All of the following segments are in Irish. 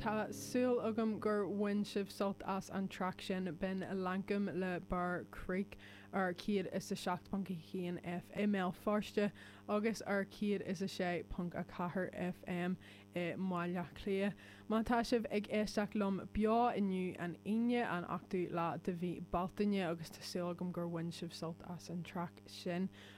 Tá súil agam gur bhain sibh sult as an traic sin b'in Lankum le Bear Creek ar 107.1 FM i mBéal Feirste agus ar 106.4 FM i mBaile Átha Cliath. Má tá sibh ag éisteacht liom beo inniu, an Aoine, an 8ú lá de mhí Bealtaine, agus tá súil agam gur bhain sibh sult as an traic sin,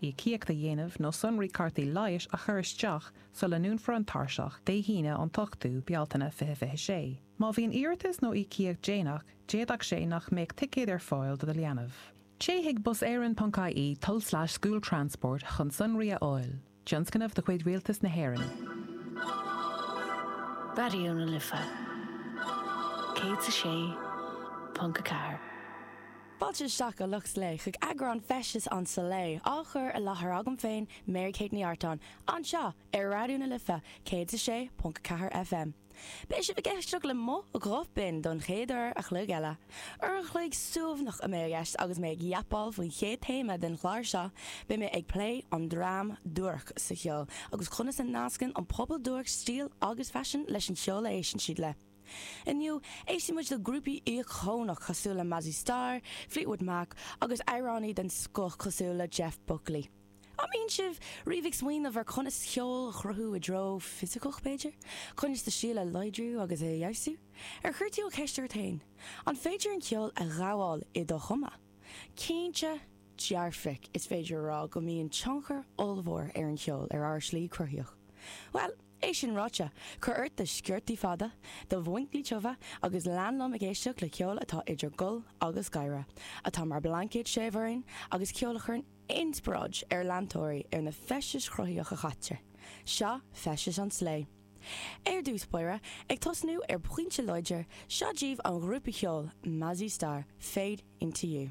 íocaíocht a dhéanamh nó sonraí cártaí leighis a chur isteach sula ndúnfar an tairseach Dé hAoine an t-ochtú Bealtaine 2026. Má bhíonn iarratas nó íocaíocht déanach, d'fhéadfadh sé nach mbeadh ticéad ar fáil do do leanbh. Téigh chuig buseireann.ie tulslais school transport chun sonraí a fháil. Tionscnamh de chuid Rialtas na hÉireann. Raidió na Life 106.4. Fáilte isteach, a lucht Slay, chuig eagrán Feisteas an Slay, á chur i láthair agam féin, Mary Kate Ní Artáin, anseo ar Raidió na Life 106.4 FM. Beidh sibh ag éisteacht le mo ghuth binn don chéad uair a chloig eile. Uair an chloig suaimhneach a mbeidh i gceist agus mé ag yapáil faoin chéad téama den chlár seo, beidh mé ag plé an dream duairc sa cheol agus conas a nascann an pobal duairc stíl agus faisean leis an cheol a éisteann siad le. Inniu, éistfidh muid le grúpaí íocónach cosúil le Mazzy Star, Fleetwood Mac agus amhránaí den scoth cosúil le Jeff Buckley. An mbíonn sibh riamh ag smaoineamh ar conas ceol a chruthú i dtreo fisiceach, b'fhéidir? Conas do stíl a láidriú agus é a fheabhsú? Ar chuir tú an cheist ort féin, an féidir an ceol a ghabháil i do chuma? Cinnte dearfach, is féidir a rá go mbíonn tionchar ollmhór ar an cheol ar ár slí cruthaíoch. Bhuel! É sin ráite, cuir ort do sciortaí fada, do mhuinchillí tiubha agus lean liom ag éisteacht le ceol atá idir gol agus gáire, atá mar blaincéad séimh orainn agus ceol a chuireann inspioráid ar leantóirí ar na feisteas chruthaíoch a chaitear. Seo feisteas an tslé. Ar dtús báire, ag tosnú ar phointe láidir, seo díobh an ghrúpa cheoil Mazzy Star, Fade Into You.